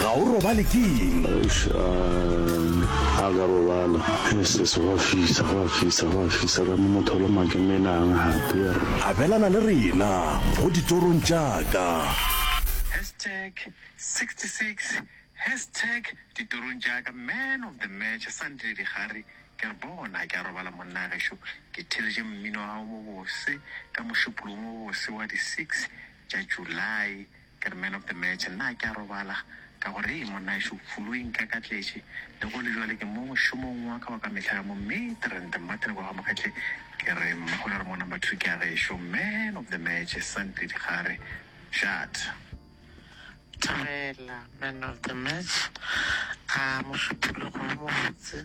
ga o robale ke eng a ka robala ss go fisa go fisa go fisa ka motholo makemenang gape abelana le rena go ditorong tšaka hashtag 66 hashtag ditorong tšaka man of the match sandile digare ke re bona ke a robala monna gešo ke theletše mmino wa gago mo bose ka mošupolong wo bose wa di 6 tša july Ke re man of the match nna a ke a robala ka gore hei monna šo flu e nkakatletše le go le jwale ke mo mošomong wa ka wa ka mehla ka mo Midrand Martin kwa Gamogetle ke re mma go ra re mo number two ke a gešo man of the match Santley Dikgare Shut Thobela man of the match a mošupologo wo mobotse.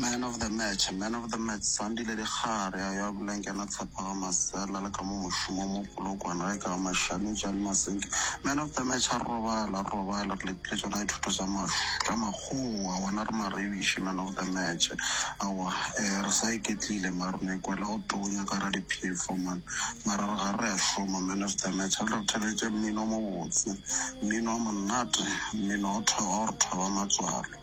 Man of the match, Man of the match, Sandile Dikgare a yo a bolang ke yena Tshephaga Masela le ka mo mošomo wa mo Polokwane ge ka ba Mashami Jali Masenke. Man of the match a robala, a robala, re letile tšona dithuto tša maš, tša makgowa, gona re marebiši Man of the match. Aowa, eh, re sa iketlile mara re no ikwela go tonya ka ra diphefo man, mara re gare re a šoma Man of the match. A re re theletše mmino o mobotse, mmino o monate, mmino o tho, o re thoba matswalo.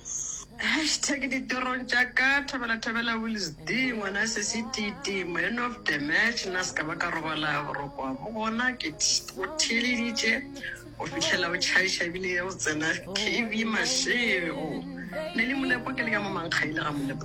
Hashtag ditorong tša ka Thabela Thabela Wills D ngwana se se titi man of the match na se ka ba ka robala borokwa bo gona ke o theleditše go fihlela o tšhaiša ebile o tsena kv mašego ne le molepo ke le ka mo mankgaile ga molepo